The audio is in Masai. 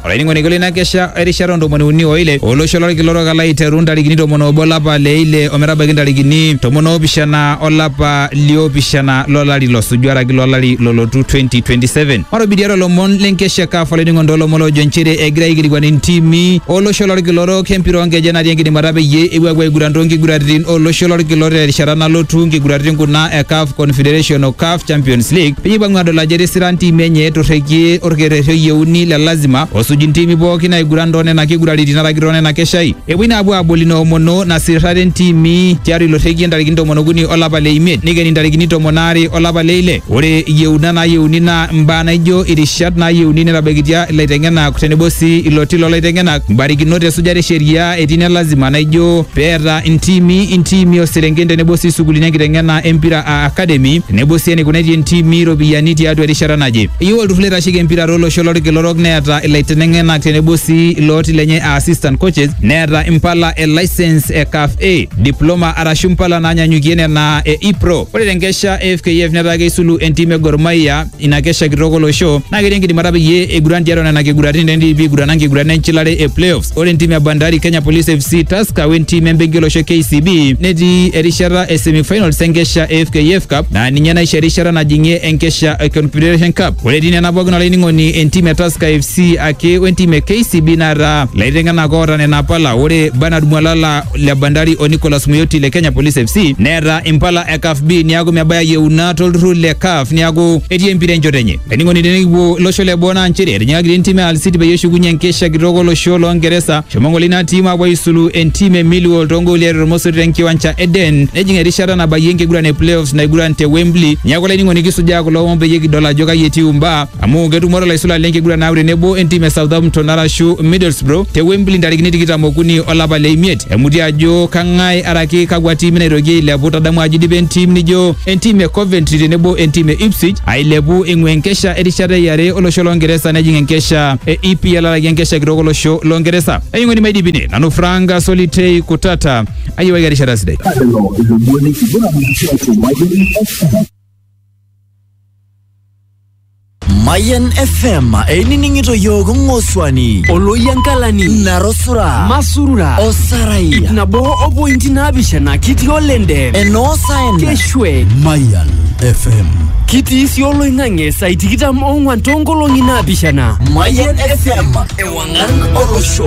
olainining'oni kule ina kesha erishata ntomoni uni oile olosho lolkila orok alo aiteru ntarikini tomon obo olapa le ile ometabaiki ntarikini tomon oopishana olapa liopishana lolari losuju araki lolari lolotu 2027 matobidiare olomon lenkesha kaf olainining'oni toolomon loojo nchere egira aikilikuan intimi olosho lolkila orok empira oonkeje natii enkidimata peyie epuo apuo aiguran toonkiguraritin olosho lolkila orok terishata nalotu nkiguraritin kuna e kaf confederation o kaf Champions League peyie ipang'u adol ajo etisira ntimi enye etorrekie orkerrerri oyieuni le lazima osuj ntimi pooki naiguran too nena kiguraritin araki too nena keshai. Epuoi naa apuo aabol ina omono nasirrare ntimi tiatua ilo rrekie ntarikini tomon okuni olapa le imiet neikeni ntarikini tomon aare olapa le ile. Ore iyieunat naayieuni naa imbaa naaijo irishat naayieuni netabaikitia ilaiteng'enak tenebo sii ilo ti loo laiteng'enak, mbarikinot e sujare e sheria etii ine lazima naaijo pee eeta ntimi, intiimi oo serenken tenebo sii sukuulini enkiteng'ena e mpira academy tenebo sii eneikuna etii entiimi iropiyiani tiatua erishata naje. Eyieu olturrur loitasheki empira tolosho lolkila orok neeta ilaiteneng'enak tenebo sii ilooti lenye aa assistant coaches neeta impala e licence e CAF A, diploma arashu impala naanyanyukie nena e e-pro. Ore tenkesha e fkf netaa keisulu entiim e Gor Mahia ina kesha kitok olosho naa ketii enkidimata peyie eiguran tiatua nena kiguratin tendipi aigurana nkiguran enchilare e playoffs ore entim e bandari kenya police fc taska we ntim embenki olosho kcb netii erishata e semifinals enkesha e fkf cup naa ninye naisho erishata najing'ie enkesha e confederation cup ore etii nena pookin olainining'oni entim e taska fc ake wentim e kcb naata ilaiteng'enak oota nena pala ore bernard mwalala le Bandari o Nicholas Muyoti le Kenya Police FC neeta impala e CAF B niaku mebaya yieuna tolturrur le CAF niaku etii empira enchoto enye. Ening'oni tenikipuo losho le boo naa nchere etinyikakita entim e Al City peyie eshukunye enkesha kitok olosho loo Ngeresa shomo ng'ole ina tim apuo aisulu entim e Millwall toongooli are tormosori tenkiwancha e Den nejing erishata nabayie enkiguran e playoffs naiguran te Wembley. Niaku olainining'oni kisujaa kulo omon peyie kidol ajo kai etiu imbaa amu ketumore laisula lenkiguran naaku tenebo entim e Southampton arashu Middlesbrough te Wembley ntarikini tikitam okuni olapa le imiet. Emuti ajo kang'ae araki kakwa tiimi naitoki ailepu. Tadamu ajo idipa entim nijo entim e Coventry tenebo entim e Ipswich ailepu eing'ua enkesha erishata e are olosho lo Ngeresa nejing enkesha e EPL araki enkesha kitok olosho lo Ngeresa. Ainyang'oni maidipine nanu Frank Solitei Kutata ayiewaki erishata sidai. Lelo ilomoni kiguran tiatua Mayian FM. Mayan FM einining'ito yiok ng'osuani oloyiankalani narosura masurura osarai ip nabo o pointi naapishana kitii olende enoosaen keshwe Mayan FM. kitii sii oloing'ang'e saai tikitam oong'wan toonkolong'i naapishana Mayan FM ewang'an olosho